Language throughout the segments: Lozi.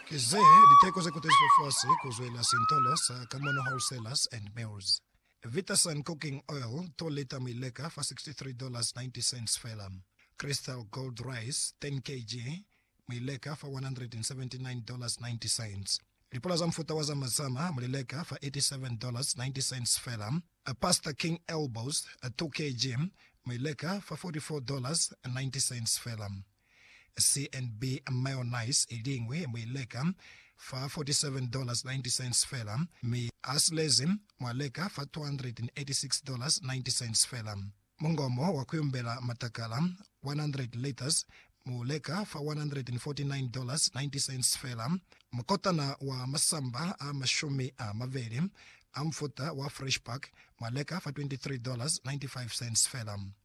Ki ze liteko ze kutezizwe fasi ku zwelela sintolo sa Kamono Wholesalers and Mills, Vitasun Cooking Oil, 2 lita mi leka fa $63.90 fela. Crystal Gold Rice, 10 kg, mi leka fa $179.90. Lipula za mufuta wa Zama Zama mu li leka fa $87.90 fela. Pasta King Elbows, 2 kg, mi leka fa $44.90 fela. CNB mayonnaise i liñwi mu i leka fa $47.90 fela, mi asilezi mwa leka fa $286.90 fela. Mungomo wa ku yumbela matakala, 100 litres, mu leka fa $149.90 fela. Mukotana wa masamba a mashumi a mabeli a mufuta wa Fresh Pack mwa leka fa $23.95 fela.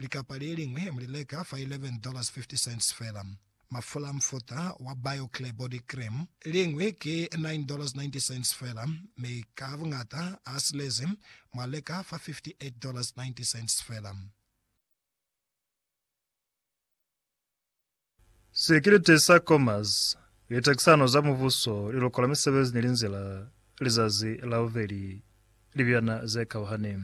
Likapa le liñwi mu li leka fa $11.50 fela. Mafula a mufuta wa BioClear Body Cream liñwi ki $9.90 fela, mi ka buñata a silezi mu a leka fa $58.90 fela. Sekilite sa Comas, Litekisano za Mubuso, Lilokola Misebezi ni Linzila, Lizazi la Bubeli, Libyana ze Kauhani.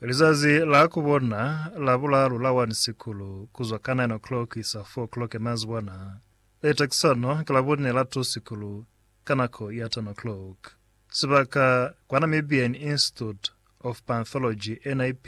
Lizazi la ku bona la bulalu la 1 Sikulu ku zwa ka 9 o'clock isa 4 o'clock ya mazibwana. Litekisano ki la bune la 2 Sikulu ka nako ya 10 o'clock. Sibaka, kwa Namibian Institute of Panthology, NIP,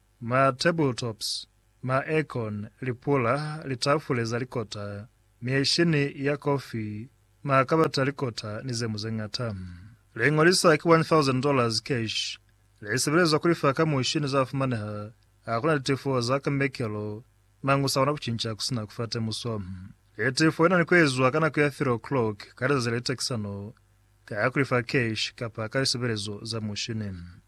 Ma tabletops, ma aircon, lipula, litafule za likota, mieshini ya kofi, makabati a likota ni ze mu ze ñata. Liño li sa ki $1,000 cash li sebelezwa ku lifa ka mushi ni za fumaneha ha ku na litifo za kambekelo, mañi u sa kona ku cinca ku si na ku fa temuso. Litifo li na ni ku ezwa ka nako ya 3 o'clock ka lizazi le litakisano ka ku lifa cash kapa ka lisebelezo za mushini.